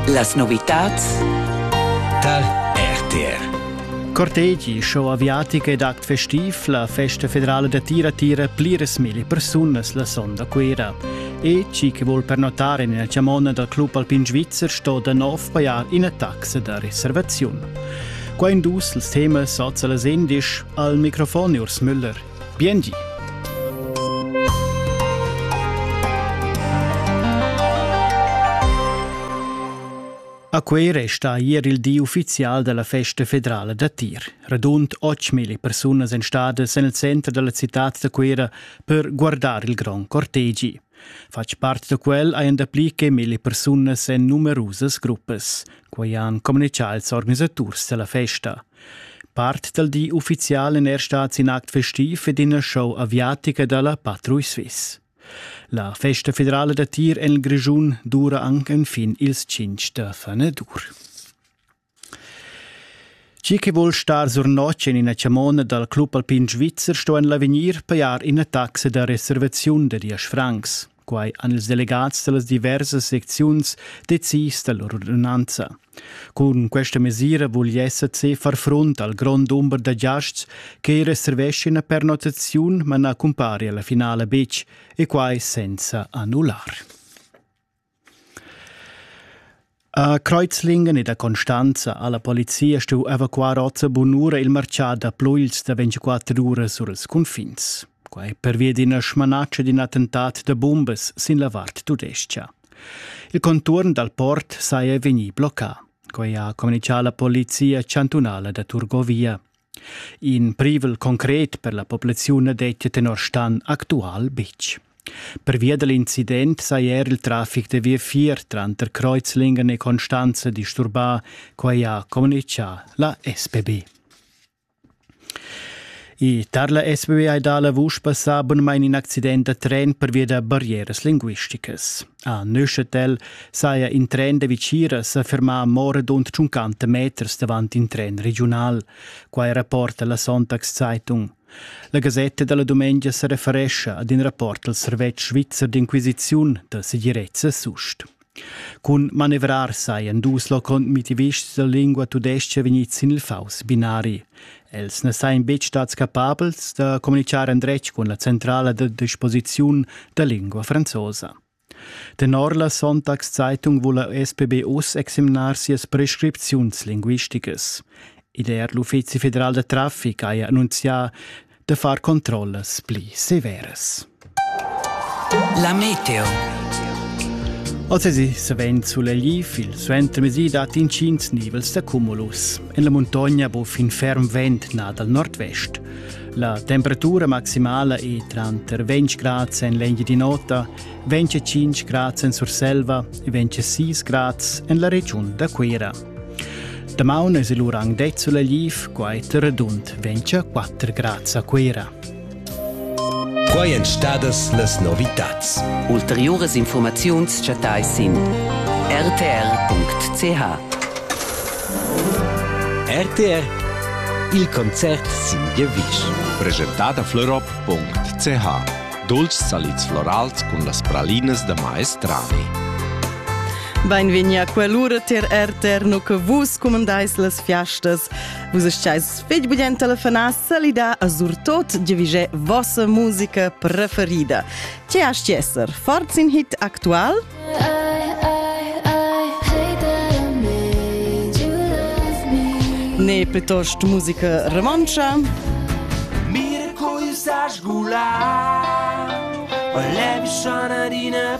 Las novitads tar RTR. Cortegi, show aviatica ed act festiv, la festa federala da tira tira pliras mille persunas la sonda Cuera. E chi che vuol pernotare nella chamona dal club alpin svizzer sto da nov pajar ina taxa da reservaziun. Qua in dus ils temas soza las endisch al microfon Urs Müller Biengi! A quei resta ier il di ufficial dalla festa federala da tir. Radund 8000 persunas èn stadas en il center dalla citad da Cuera per guardar il grond cortegi. Fatg part da quel hajan dapli che mille persunas en numerusas gruppas. Quai han communitgà ils organisaturs da la festa. Part dal di uffizial in er stads in act festiv ed ina show aviatica da la Patrouille Suisse. La festa federale da tir en il Grischun dura anche fin ils 5 da Fanadur. Chi chi voul star sur notg en ina chamona dal Club Alpin Svizzer sto en l'avegnir pajar ina taxa da reservaziun da diesch francs. Quai han ils delegats da las diversas secziuns decis da lur ordinanza. Cun questa mesira vul l'SAC far frunt al grond dumber da giasts che reserveschina pernottaziun ma na cumpari alla finala betg e quai senza annullar. A Kreuzlingen ed a Constanza ha la polizia stuù evacuar oz a bunura il marcià da pluils da 24 uras sur ils cunfins. Quai pervia d'ina smanatscha d'in attentat da bumbas sin la vart tudescha. Il conturn dal port saja vegnì bloccà. Quai ha communicà la polizia chantunala da Turgovia. In privel concret per la populaziun dettia tenor Stan actual betg. Pervia da l'incident saja er il trafic da viafier tranter Kreuzlingen e Constanza disturbà, quai ha communitgà la SPB. E tar la SBB hai dà la vusch passà bunmain in accident da tren pervia da barrieras linguisticas. A Neuchâtel saja in tren da Vitgira sa fermà mo radund 50 meters davant in tren regiunal. Quai rapporta la Sonntagszeitung. La Gasetta della Dumengia sa referescha ad in rapport al servetsch svizzer d'inquisiziun da segirezza sust. Cun manevrar sajan dus locondmitivists da lingua tudescha vegnids sin il faus binari. Els na sajan betg stads capabels da communitgar endretg cun la centrala da disposiziun da lingua franzosa. Tenor la Sonntagszeitung vula SPB uss examinar sias prescripziuns linguisticas. Ider l'Uffizi federal da traffic haja annunzià da far controllas pli severas. La meteo. Ozzesi savend sulegliv il suentermesi dat inschins nivels da cumulus. En la muntogna bo fin ferm vent na dal nord-vest. La temperatura maximala è tranter 20 grads en l'Engiadin'Ota, 25 grads en Surselva e 26 grads en la regiun da Cuira. Damaun es il urang det sulegliv, quai redund 24 grads a Cuira. Quai èn stadas las novitads. Ulteriuras infurmaziuns chattai sin rtr.ch. RTR Il concert sin giavisch. Presentada florop.ch Dolces salids florals cun las pralinas da maestrani. Beinvegni a quell'ura ter RTR, nu che vus cumandais las fiastas. Vus stais fitg bien telefonà salidà a surtot giavigé vossa musica preferida. Ce hast esser? Forz in hit aktual? Ne plitost musica romantscha? Mir coisas gular, olem shana dina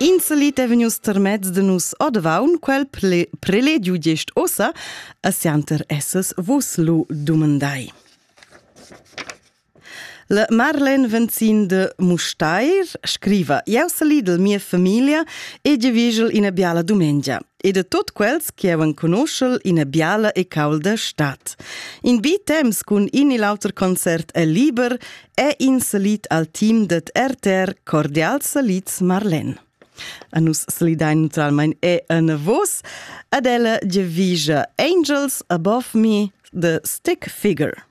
Inselit è vegnius termez de nus odvaun quel prelegiu gest ossa, a sianter esses vos lu dumandai. La Marlen Venzin de Mustair scriva: Ieu se lidel mia familia e gevigel ina biala dumengia. e de tot quels che havan conoschel ina biala e caulda stad. In bi temps cun in e l'auter concert è liber è in salit al team det RTR cordial salits Marlen. A nus slidain neutralmein e en vos ad ella divisa Angels Above Me the Stick Figure.